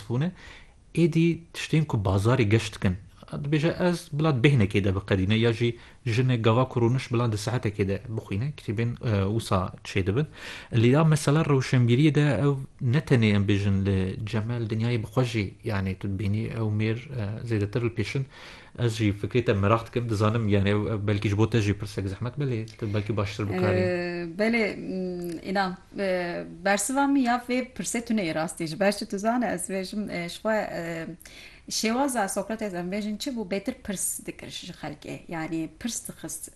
Bûne, êdî tiştên ku bazarê geş dikin, dibêje ez bila bêhnekê de biqedîne ya jî jinê gava ku rûniş bila di saetekê de bixwîne kitêbên wisa çê dibin. Lê ya mesela rewşenbîriyê de ew ne tenê em bêjin li Cemel dinyayê bi xwe jî yanê tu dibînî ew mêr zêdetir li pêşin Ez jî fikrê te meraq dikim, dizanim yanê belkî ji bo te jî pirsek zehmet be lê tu belkî baştir bikarî. Belê înan bersiva min ya vê pirsê tune yê rastî ji ber çi tu zane ez dibêjim ji xwe şêwaza Sokrates em bêjin çi bû bêtir pirs dikir ji xelkê yanî pirs dixist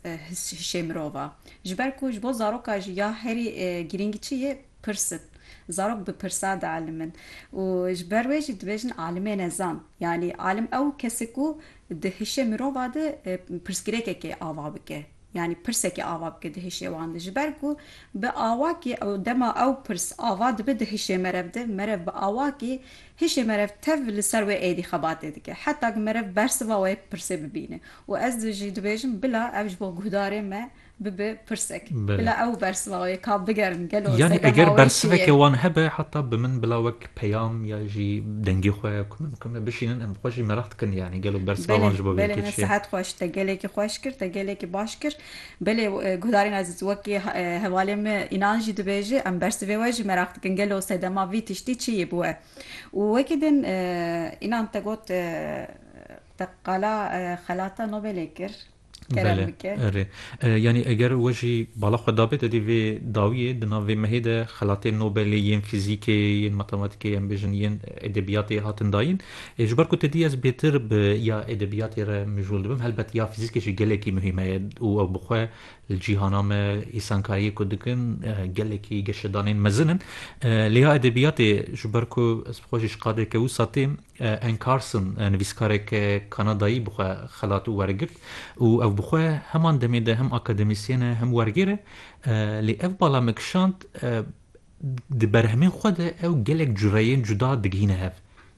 hişê mirova ji ber ku ji bo zaroka jî ya herî girîng çi yê pirs in. Zarok bi pirsan dialimin û ji ber wê jî dibêjin alimê nezan. Yanî alim ew kes e ku di hişê mirova de pirsgirêkekê ava bike. Yanî pirsekê ava bike di hişê wan de. Ji ber ku bi awakî dema ew pirs ava dibe di hişê merev de, merev bi awakî hişê merev tev li ser wê êdî xebatê dike. Heta ku merev bersiva wê pirsê bibîne. Û ez jî dibêjim bila ev ji bo guhdarê me bibe pirsek. Bila ew bersivavê ka bigerim gelo zêde mawê çi ye? Yanî eger bersiveke wan hebe heta bi min bila wek peyam ya jî dengê xwe ku min ku me bişînin em xwe jî meraq dikin yanî gelo bersiva wan ji bo vê yekê çi ye? Belê belê sihet xweş te gelekî xweş kir te gelekî baş kir belê guhdarên ezîz wekî hevalê me înan jî dibêje em bersivê we jî meraq dikin gelo sedema vî tiştî çi yê bi we û wekî din înan te got te qala xelata Nobelê kir. kerem bike. Erê. Yanî eger we jî bala xwe dabê te dê vê dawiyê di nav vê mehê de xelatên Nobelê yên fîzîkê yên matematîkê em bêjin yên edebiyatê hatin dayîn. Ji ber ku te dî ez bêtir bi ya edebiyatê re mijûl dibim helbet ya fîzîkê jî gelekî muhîm e û ew bi xwe li cîhana me îsankariyê ku dikin gelekî geşedanên mezin in. Lê ya edebiyatê ji ber ku ez xwe jî ji qadeke wisa têm Anne Carson, nivîskarek Kanadayî bi xwe xelat û wergirt û ew bi xwe heman demê de hem akademisyên e hem wergêr e. Lê ev bala me kişand, di berhemên xwe de ew gelek cureyên cuda digihîne hev.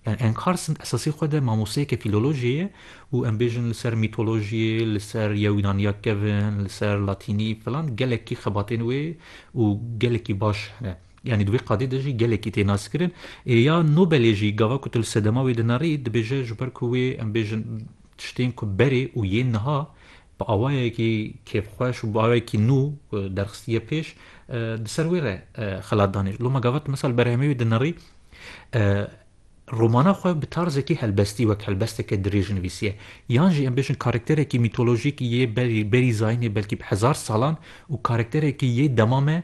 Anne Carson esasî xwe de mamosteyeke fîlolojiyê ye û em bêjin li ser mîtolojiyê, li ser ya Wînaniya kevn, li ser latînî filan gelekî xebatên wê û gelekî baş hene. Yanî di wê qadê de jî gelekî tê naskirin. Ê ya Nobelê jî gava ku tu li sedema wê dinarî dibêje ji ber ku wê em bêjin tiştên ku berê û yên niha bi awayekî kêfxweş û bi awayekî nû derxistiye pêş di ser wê re xelat danê. Loma gava tu misal berhemê wê dinirî romana xwe bi tarzekî helbestî wek helbesteke dirêj nivîsiye. Yan jî em bêjin karakterekî mîtolojîk yê berî berî zayînê belkî bi hezar salan û karakterekî yê dema me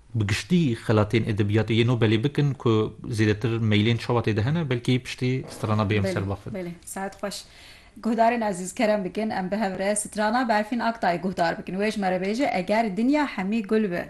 Bi giştî xelatên edebiyatê yê Nobelê bikin ku zêdetir meylên çawa tê de hene belkî piştî strana bê em ser Belê, bafin. belê. Saet xweş. Guhdarên ezîz kerem bikin em bi hev re strana Berfîn Aktayê guhdar bikin. Wê ji me re bêje eger dinya hemî gul bi.